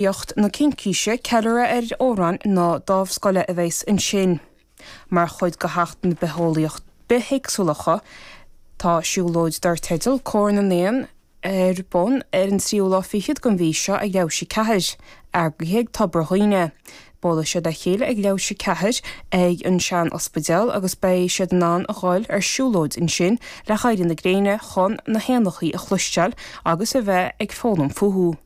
Éacht na Cincíse, ceiliúradh ar Amhráin na Dámhscoile a bheas ansin. Mar chuid de Sheachtain na Bitheolaíocht, Bithéagsúlachta, tá siúlóid dar teideal Cór na nÉan ar bun ar an tríú lá fichead den mhí seo ag leathuair tar éis a ceathair, eagraithe ag Tobar Dhuibhne. Buailfidh siad le chéile ag leathuair tar éis a ceathair ag an sean-ospidéal agus beidh siad in ann a dhul ar siúlóid ansin le héirí na gréine chun na héanachaí a chloisteáil agus a bheith ag foghlaim fúthu.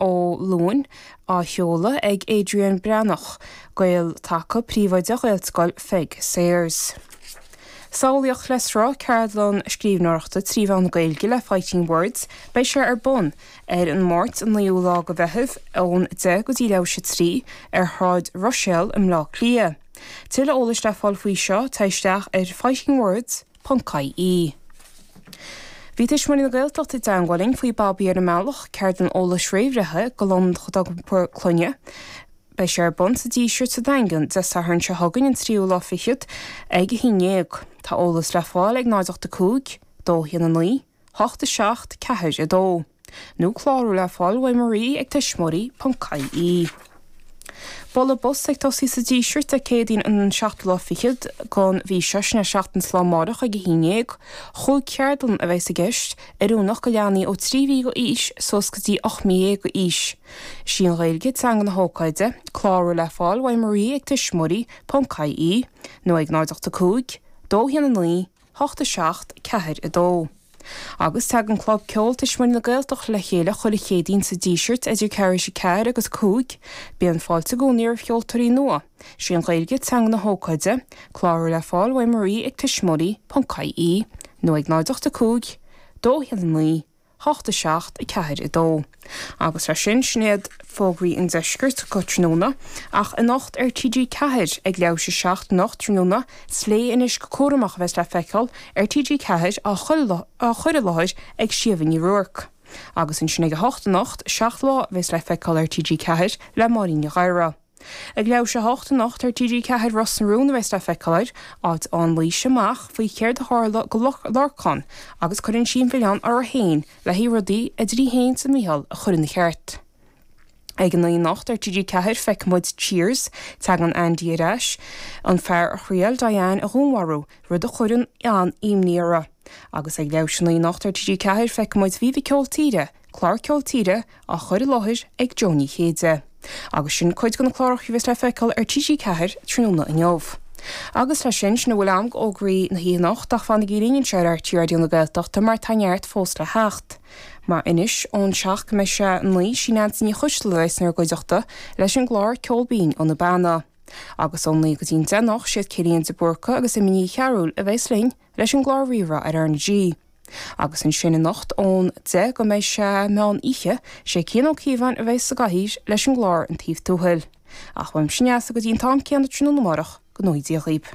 ó Luain, á sheoladh ag Adrian Breathnach, Gael Taca, Príomhoide Ghaelscoil Pheig Sayers. Samhlaíocht le sruth ceardlann scríbhneoireachta trí mheán na Gaeilge le Fighting Words, beidh sé ar bun ar an Máirt an 9ú lá go Mheitheamh ón 10 go dtí leathuair tar éis a 3 ar Shráid Ruiséal i mBleá Cliath. Tuilleadh eolais le fáil faoi seo, téigh isteach ar fightingwords. ie. Bhí Tuismitheoirí na Gaeltachta i dteangmháil linn faoi Babaí ar an mBealach, ceardlann eolais réamhbhreithe go mhná atá ag iompar clainne. Beidh sé ar bun sa Díseart sa Daingean Dé Sathairn seo chugainn an tríú lá fichead ag a haon déag. Tá eolas le fáil ag 085 219 8 7 4 2 Nó clárú le fáil uaidh Marie ag tuismitheoirí ponc IE. Bualadh bos ag tosaí sa Díseart Dé Céadaoin an 7ú lá fichead den mhí seo, sin é seachtain is an lá amárach ag a haon dhéag. Chúig cheardlann a bheas i gceist, oiriúnach go leanaí ó trí mhí d'aois suas go dtí ocht mí dhéag d'aois. Is í an Ghaeilge teanga na hócáide. Clárú le fáil uaidh Marie ag tuismitheoirí ponc IE nó ag 0 8 5 2 1 9 hocht a seacht ceathair a dó. Agus tagann Club Ceoil Tuismitheoirí na Gaeltachta le chéile chuile Chéadaoin sa Díseart idir ceathrú tar éis a ceathair agus a cúig. Bíonn fáilte i gcónaí roimh cheoltóirí nua. Is í an Ghaeilge teanga na hócáide. Clárú le fáil uaidh Marie ag tuismitheoirí.ie nó ag 085 219 hocht a seacht a ceathair a dó. Agus leis sin, sin iad fógraí an deiscirt go tráthnóna, ach anocht ar TG4 ag leathuair tar éis a seacht anocht tráthnóna, is Léigh Anois go Cúramach a bheas le feiceáil ar TG4 á chur i láthair ag Síomha Ní Ruairc. Agus ansin ag a hocht anocht, Seacht Lá a bheas le feiceáil ar TG4 le Máirín Ní Ghadhra. Ag leathuair tar éis a hocht anocht ar TG4 Ros na Rún a bheas le feiceáil air, áit a fhaigheann Laoise amach faoi chéard a tharla go Lorcán agus cuireann sí an mhilleán uirthi féin le haghaidh rudaí idir í fhéin 's Micheál a chur ina cheart. Ag a naoi anocht ar TG4 feicfidh muid Cheers, teagann Andy ar ais, an fear a thriail Diane a dhúnmharú, rud a chuireann an-imní orthu. Agus ag leathuair tar éis a naoi anocht ar TG4 feicfidh muid Viva Ceol Tíre, Clár ceol tíre á chur i láthair ag Jó Ní Chéide. Agus sin cuid de na cláracha a bheas le feiceáil ar TG4 tráthnóna inniu. Agus leis sin, sin a bhfuil a'm d'fhógraí na hoíche anocht ach fanaigí linn anseo ar RTÉ Raidió na Gaeltachta mar tá neart fós le theacht. Mar anois ón seacht go mbeidh sé a naoi sí Neansaí Ní Choisdealbha a bheas inár gcuideachta leis an gclár Ceol Binn ó na Beanna. Agus ón naoi go dtí an deich anocht siad Cillian de Búrca agus Emma Ní Chearúil a bheas linn leis an gclár Rí-Rá ar R na G. Agus ansin anocht ón 10 go mbeidh sé meán oíche, sé Cian Ó Cíobháin a bheas sa gcathaoir leis an gclár An Taobh Tuathail. Ach uaimse Neasa go dtí an t-am céanna tráthnóna amárach, go ngnóthaí Dia dhaoibh.